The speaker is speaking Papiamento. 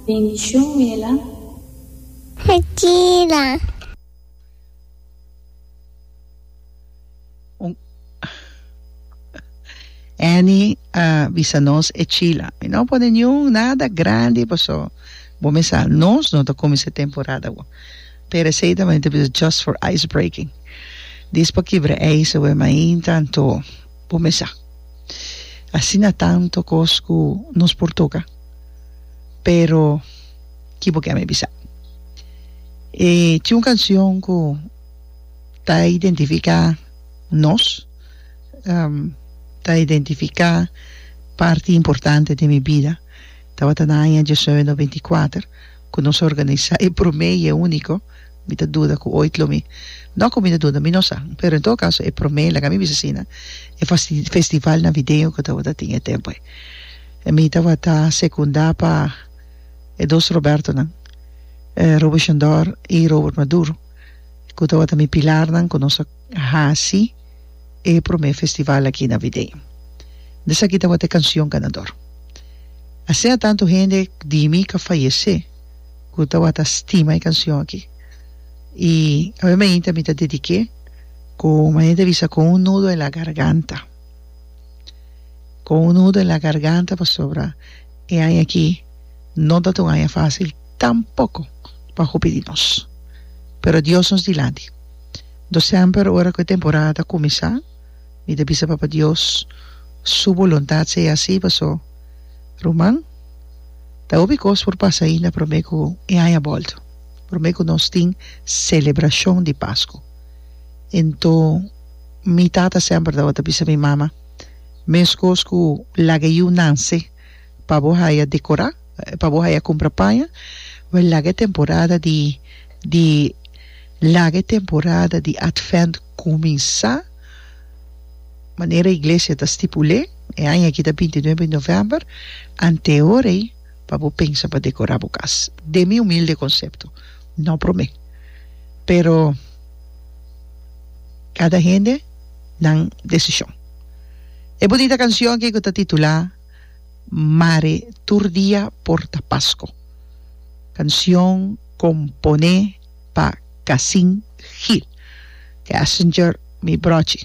Bendicion Mela. Mentira. Un Annie a bisa nos e chila mi no pone niun nada grandi paso bo mi sa nos no ta cuminsa e temporada awor pero esey ta mester bisa just for ice breaking dis pa kibra ijzer we mainta anto bo mesa. Asina tanto cos cu nos por toca, pero ki bo keme bisa? E tin un cancion cu ta identifica nos, ta identifica parti importante den mi bida, tabata na aña diecinueve noventa y cuater cu nos organisa e prome y e unico. Mi ta duda cu ooit lo mi. No cu mi ta duda, mi no sa. Pero en todo caso, e prome, laga mi bisa asina, e festival navideño cu tabata tin e tempo ei. Mi tabata secunda pa e dos Robertonan, Robert Shondor y Robert Maduro, cu tabata mi pilarnan cu nos a haci e prome festival aki navideño. Esaki tabata e cancion ganador. Asina tanto hende di mi ca fayece. ku tabata stima e kanshon aki i awe mainta mi ta dedik'é ku mañana ta bisa kon un nudo en la garganta kon un nudo en la garganta pasobra e aña aki no tabata un aña fásil tampoko pa hopi di nos pero Dios nos dilanti anto semper ora ku e temporada ta kuminsá mi ta bisa Papa Dios su boluntat sea asi paso ruman. Ta hopi kos por pasa ainda promé ku e aña bòlta, promé ku nos tin selebrashon di Pasku. Anto mi tata semper tabata bisa mi mama, Meskos ku laga yu nanse pa bo haya dekorá, pa bo haya kumpra paña, wèl laga e temporada di di laga e temporada di Advènt kuminsá. Manera Iglesia ta stipul'é, e aña aki ta binti nuebe novèmber, anteor ei pa bo pensa pa dekorá bo kas. Den mi humilde konsepto, no promé. Pero kada hende nan desishon. E bunita kanshon aki ku ta titulá Mare tur dia por ta Pasko, kanshon komponé pa Cassin Gil, Cassinger mi brochi.